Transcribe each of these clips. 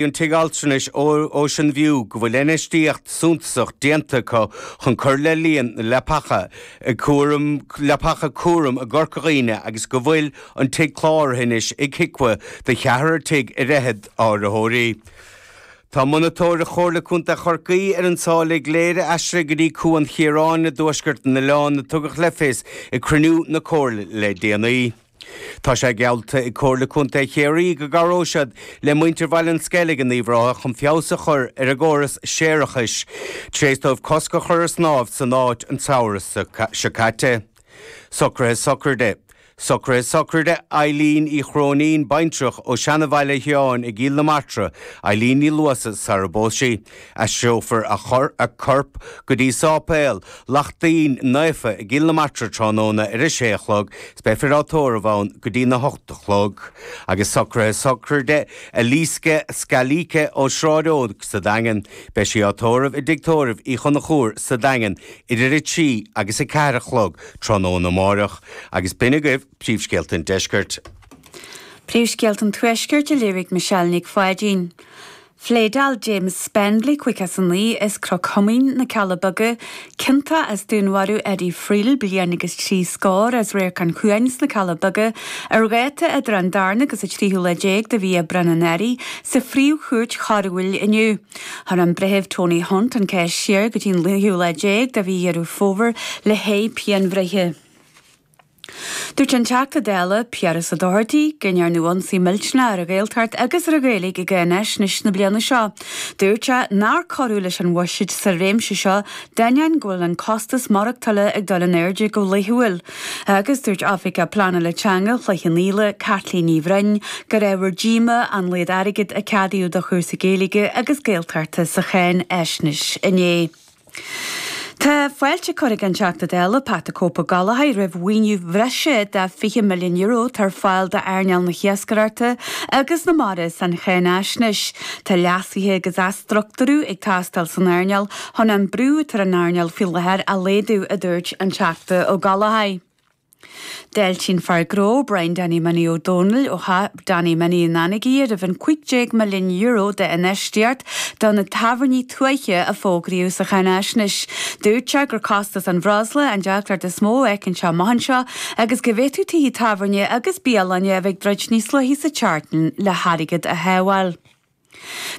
Bhí an tigh altranais Ocean View go bhfuil infheistíocht suntasach déanta acu chun cur le líon na leapacha cúram leapacha cúraim i gCorca Dhuibhne agus go bhfuil an tigh cláraithe anois ag HIQA do cheathrar déag ar fhichead áitritheoirí. Tá monatóireacht Chomhairle Contae Chorcaí ar an tsáile i gCléire aistrithe go dtí Cuan Chiaráin i dtuaisceart an oileáin a tugadh le fios ag cruinniú na Comhairle le déanaí. Tá sé geallta ag Comhairle Contae Chiarraí go gcabhróidh siad le muintir Bhaile an Sceilg in Uíbh Ráthaigh chun feabhas a chur ar a gcóras séarachais tar éis dóibh cosc a chur ar snámh san áit an samhradh seo caite. Socruithe Sochraide Socruithe Sochraide Eileen Uí Chróinín, baintreach ó Seanabhaile Sheáin i gCill na Martra, Eileen Ní Luasa, sara bpós sí. Aistreofar a corp go dtí Sáipéal Lachtaín Naofa i gCill na Martra tráthnóna ar a sé a chlog is beifear á tórramh ann go dtí a hocht a chlog. Agus socruithe sochraide Elisca Scalise ó Sráid Eoin sa Daingean. Beidh sí á tórramh i dTigh Tórraimh Uí Chonchúir sa Daingean idir a trí agus a ceathair a chlog tráthnóna amáireach. Agus b'in agaibh Príomhscéalta an Deiscirt. Príomhscéalta an Tuaiscirt a léirigh Michelle Nic Pháidín. Phléadáil James Spendley caoga is a naoi as Cnoc Thiomáin na Cealla Beaga, ciontach as dúnmharú Eddie Friel bliain agus trí scór as Radharc an Chuain sna Cealla Beaga, ar dháta idir an darna agus a tríú lá déag de mhí Aibreán anuraidh, sa Phríomh-Chúirt Choiriúil inniu. Chuir an Breitheamh Tony Hunt an cás siar go dtí an tríú lá déag de mhí Dheireadh Fómhair le haghaidh pianbhreithe. Dúirt an Teachta Dála, Piaras Ó Dochartaigh, go ndearnadh ionsaí millteanach ar an Ghaeltacht agus ar an Ghaeilge i gcáinaisnéis na bliana seo. Dúirt sé nár cuireadh leis an bhuiséad sa réimse seo d'ainneoin go bhfuil an costas maireachtála ag dul in airde go laethúil agus dúirt oifigeach pleanála teanga Chloich Cheann Fhaola, Caitlín Ní Bhroin, gur ábhar díomá a laghad airgid a ceadaíodh do chúrsaí Gaeilge agus Gaeltachta sa cháinaisnéis inné. Tá fáilte curtha ag an Teachta Dála Pat the Cope Ó Gallchóir roimh mhaoiniú bhreise de €20 milliún atá ar fáil d'earnáil na hiascaireachta agus na mara san cháinaisnéis. Tá leasuithe agus athstructúrú ag teastáil san earnáil chun an brú atá ar an earnáil faoi láthair a laghdú a dúirt an Teachta Ó Gallchóir. D'fháiltigh an fear gnó, Brian Danny Minnie Ó Dónaill ó Theach Danny Minnie in Anagaire roimh an €15 milliún d'infheistíocht do na tábhairní tuaithe a fógraíodh sa cháinaisnéis. Dúirt sé gur costas an bhreosla an deacracht is mó a fheiceann sé amuigh anseo agus go bhféadfadh tithe tábhairne agus bialanna a bheith ag druid níos luaithe sa tseachtain le hairgead a shábháil.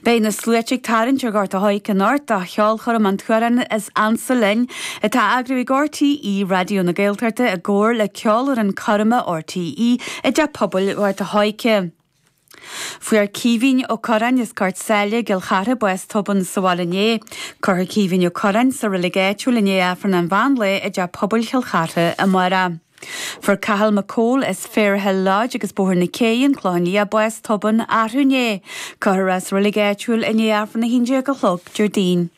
Beidh na sluaite ag tarraingt ar Ghort an Choirce anocht do cheolchoirm an tSuáilce is Ansa Linn, atá á eagrú ag RTÉ Raidió na Gaeltachta i gcomhar le Ceolfhoireann Coirme RTÉ i dTeach Pobail Ghort an Choirce. Fuair Caoimhín Ó Curráin as Gort Sáile i gCill Chartha bás tobann sa bhaile inné. Cuirfear Caoimhín Ó Curráin sa reilig áitiúil i ndiaidh Aifreann an mheán lae i dTeach Pobail Chill Chartha amárach. Fuair Cathal Mac Comhaill as Fair Hill Lodge agus Bóthar na Cé, An Clochán Liath bás tobann arú inné. Cuirfear sa roilig áitiúil i ndiaidh Aifreann 11 a chlog, Déardaoin.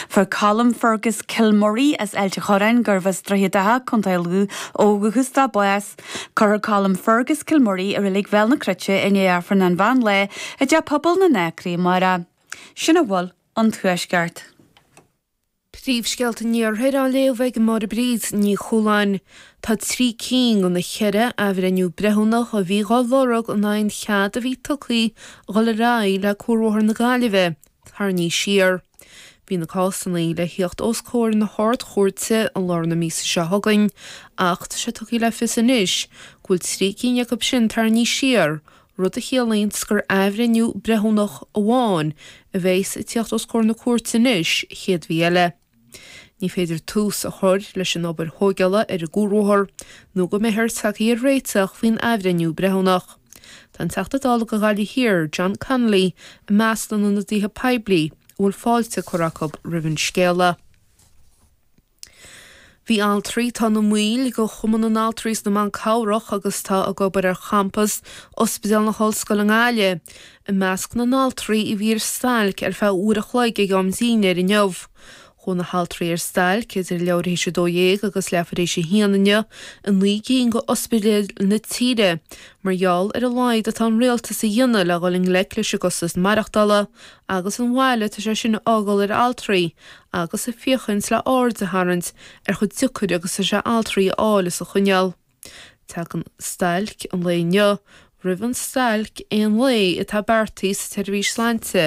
Fuair Colm Fergus Kilmurry as Ailt an Chorráin, gurbh as Droichead Átha, Co Lú ó dhúchas dó, bás. Cuirfear Colm Fergus Kilmurry i roilig Bhéal na Cruite i ndiaidh Aifreann an mheán lae i dTeach Pobail na nAcraí amárach. Sin a bhfuil ón Tuaisceart. Príomhscéalta an Iarthair á léamh ag Máire Bríd Ní Chualáin. Tá trí cinn de na ceithre athbhreithniú breithiúnach a bhí dá lorg in aghaidh an chead a bhí tugtha dhul ar aghaidh le Cuarbhóthar na Gaillimhe tarraingthe siar. Bhí na cásanna le thíocht os comhair na hArd-Chúirte i lár na míosa seo chugainn ach tá sé tugtha le fios anois go bhfuil trí cinn acu sin tarraingthe siar rud a chiallaíonns gur athbhreithniú breithiúnach amháin a bheas ag tíocht os comhair na cúirte anois an chéad mhí eile. Ní féidir tús a chur leis an obair thóigeála ar an gcuarbhóthar nó go mbeifear tagtha ar réiteach faoin athbhreithniú breithiúnach. Tá an Teachta Dála do Ghaillimh Thiar, John Connolly, i measc na n-ionadaithe poiblí a bhfuil fáilte curtha acu roimh an scéala. Bhí altraí atá ina mbaill de Chumann na nAltraí is na mBan Cabhrach agus atá ag obair ar champas Ospidéal na hOllscoile i nGaillimh i measc na n-altraí a bhí ar stailc ar feadh uair a chloig ag am dinnéir inniu. Chuaigh na haltraí ar stailc idir leathuair théis 12 agus leathuair théis 1 inniu i naoi gcinn de ospidéil na tíre mar gheall ar a laghad atá an rialtas a dhéanamh le dhul i ngleic leis an gcostas maireachtála agus an bhail atá sé sin a fhágáil ar altraí agus ag féachaint le haird a tharraingt ar chomh deacair agus is atá sé altraí a fháil is a choinneáil. Tagann stailc an lae inniu roimh an stailc aon lae atá beartaithe sa tseirbhís sláinte.